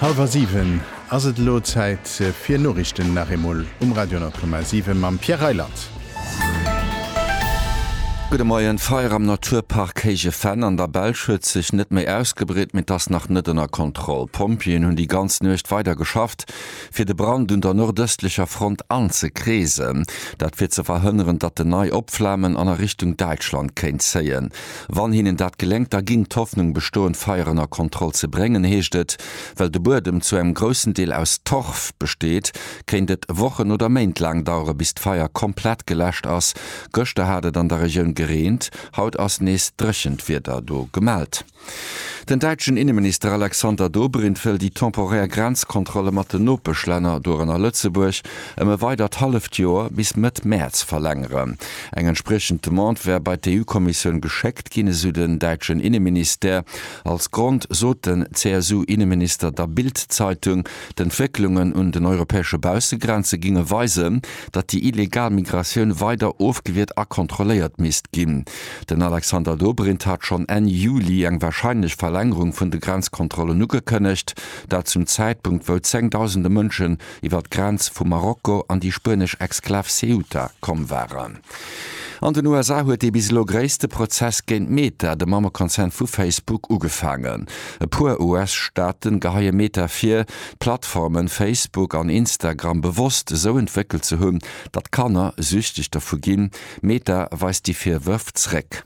Hallwer siwen ass et elo. Zäit fir Noriichten nach eemol um Radio 10,7 mam Pierre Reyland. Gudde Moien, D'Feier am Naturpark Héije Venn an der Belsch huet sech net méi ausgebreet, mee t'ass nach net ënner Kontroll. D'Pompjeeën hunn déi ganz Nuecht weider geschafft, fir de Brand un der nordëstlecher Front anzekreesen. Dat fir ze verhënneren, datt en nei opflamen an a Richtung Däitschland kéint zéien. Wann hinnen dat geléngt, da ginn d'Hoffnung bestoen, d'Feier ënner Kontroll ze bréngen, heescht et. Well de Buedem zu engem groussen Deel aus Torf besteet, kéint et Wochen oder Méint laang dauere bis d'Feier komplett geläscht ass. Gëschter hat et an der Regioun gereent, haut ass nees dréchent Wieder do gemellt. Den däitschen Inneminister Alexander Dobrindt wëll déi temporär Grenzkontrolle mat den Nopeschlänner, dorënner Lëtzebuerg, ëm e weidert halleft Joer, bis Mëtt Mäerz, verlängeren. Eng entspriechend Demande wär bei d'EU-Kommissioun geschéckt ginn, esou den däitschen Inneministère. Als Grond sot den CSU-Inneminister der Bild-Zeitung, d'Entwécklungen un den europäesche Baussegrenze géinge weisen, datt déi illegal Migratioun weider ofgewiert a kontrolléiert misst ginn. Den Alexander Dobrindt hat schonn Enn Juli eng warscheinlech Verlängerung vun de Grenzkontrollen ugekënnegt, dat zum Zäitpunkt wou zéngdausende Mënschen, iwwer d'Grenz vu Marokko an déi spuenesch Exklav Ceuta komm waren. An den USA huet dee bis elo gréisste Prozess géint Meta, de Mammekonzern vu Facebook, ugefaangen. E puer US-Staaten geheie Meta vir, d'Plattformen Facebook an Instagram bewosst esou entwéckelt ze hunn, datt Kanner süchteg dervu ginn. Meta weist déi Virwërf zréck.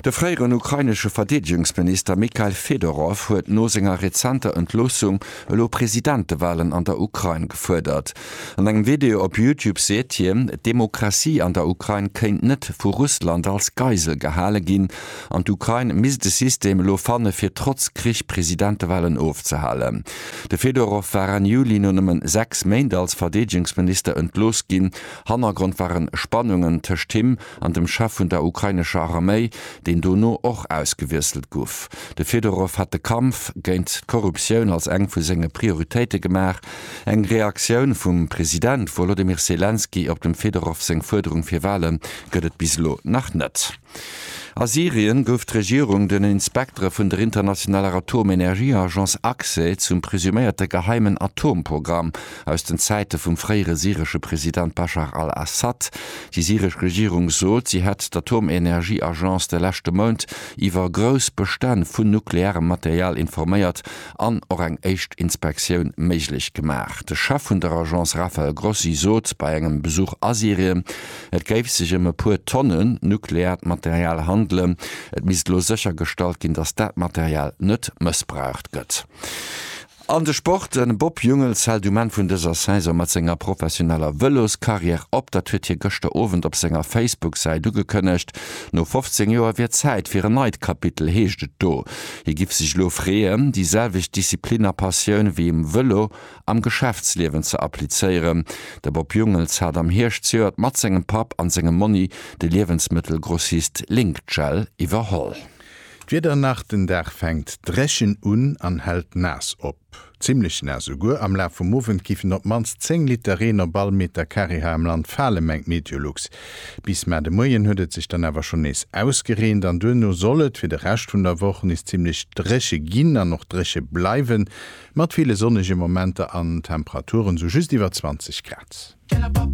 De fréieren ukrainesche Verdeedegungsminister Mikhail Fedorow huet no senger rezenter Entloossung elo Presidentewalen an der Ukrain gefuerdert. An engem Video op Youtube seet hien, d'Demokratie an der Ukrain kéint net vu Russland als Geisel gehale ginn an d'Ukrain misst e System elo fanne fir trotz Krich Presidentewalen ofzehalen. De Fedorow war Enn Juli no nëmme sechs Méint als Verdeedegungsminister entlooss ginn. Hannergrond waren Spannungen tëscht him an dem Chef vun der ukrainescher Arméi, deen dono och ausgewiesselt guff. De Fedorow hat de Kampf géint d'Korruptioun als eng vu senge Prioritéite gemaach. Eng Reaktioun vum President Wolodymyr Selenskyj op dem Fedorow seng Fuerderung fir Wahle gëtt et bis elo nach net. A Syrien gouf d'Regierung den Inspektere vun der internationaler Atomenergieagence, ACSE, zum presuméierte geheimen Atomprogramm aus den Zäite vum fréiere syresche President Baschar al-Assad. Déi syresch Regierung sot, si hätt d'Atomenergieagence de leschte Mount iwwer grouss Bestänn vun nuklearem Material informéiert an och eng éischt Inspektioun méiglech gemaach. De Chef vun der Agence Rafael Grossi sot bei engem Besuch a Syrien, et géif sech ëm e puer Tonne nukleaart Material handelen. Et misst elo séchergestallt ginn, datt dat Material net mëssbraucht gëtt. An de Sport, De Bob Jungels hält um Enn vun dëser Saison mat senger professioneller Vëloscarrière op. Dat huet hie gëschter Owend op senger Facebook-Säit ugekënnegt. No 15 Joer wier Zäit fir en neit Kapitel, heescht et do. Hie giff sech elo freeën, déi selwecht Disziplin a Passioun wéi um Vëlo am Geschäftsliewen ze applizéieren. De Bob Jungels hat am Hierscht zejoert mat sengem Papp an sengem Monni de Liewensmëttelgrossist Link-Gel iwwerholl. D'Wieder nach, den Dag fänkt drechen un an hält naass op, zimmlech naass esouguer. Am Laf vum Owend giffen op d'mannst 10 Liter Reen op all Meter Carré hei am Land falen, mengt Meteolux. Bis mar de Moien huet et sech dann awer schonn nees ausgereent an duerno soll et fir de Rescht vun der Woch nees zimmlech dréche ginn an och dréche bleiwen, mat ville sonnege Momenter an Temperaturen sou just iwwer 20 Grad.